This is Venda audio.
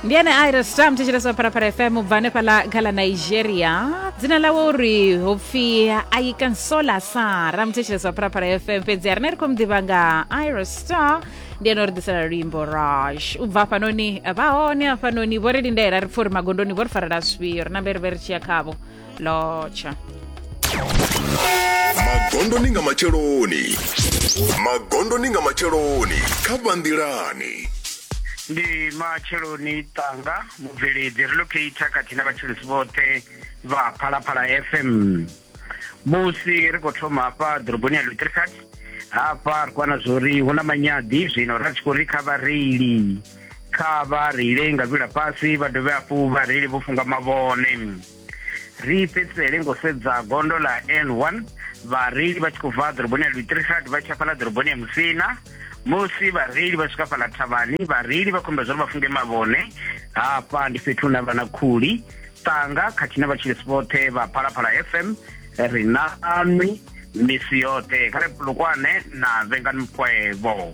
ndi ene aira stam thetsheleswa pharapara fm u bva hanefhala kha ḽa nigeria dzina ḽawe uri ho pfi aikansola sara muthetsheleswa pharapara fm fhedzi a rine ri khou mu ḓivha nga ira star ndi ene o ri ḓisela luimbo rash u bva hafhanoni vha hone hafhanoni vho ri lindela ri pfha uri magondoni vho ri farela zwifhio ri nambe ri vhe ri tshi ya khavho lotsha magondoni nga matsheloni magondoni nga matsheloni kha vhanḓilani ndi matsheloni tanga mubveledzi relocata khathihi na vhatshilisi vhoṱhe vha phalaphala fm musi ri khou thoma hafha ḓoroboni ya lutricart hafha ri kwana zwo ri hu na manyadi zwino ra tshi khou ri kha vhareili kha vha reile nga vhila fhasi vha dovhe hafhu vha reile vho funga mavhone ri fhedzisele ngo sedza gondo ḽa n1 vhareili vha tshi khou bva ḓoroboni ya lutrihad vha tsha fhaḽa ḓoroboni ya musina musi vhareili vha swika fhaḽa thavhani vhareili vha khombela zwa uri vha funge mavhone hafha ndi fhethu hune vha na khuli ṱanga khathihi na vhatshilisi vhoṱhe vha phalaphala fm ri na anwi misi yoṱhe kha ri lukwane na vhengani mukwevho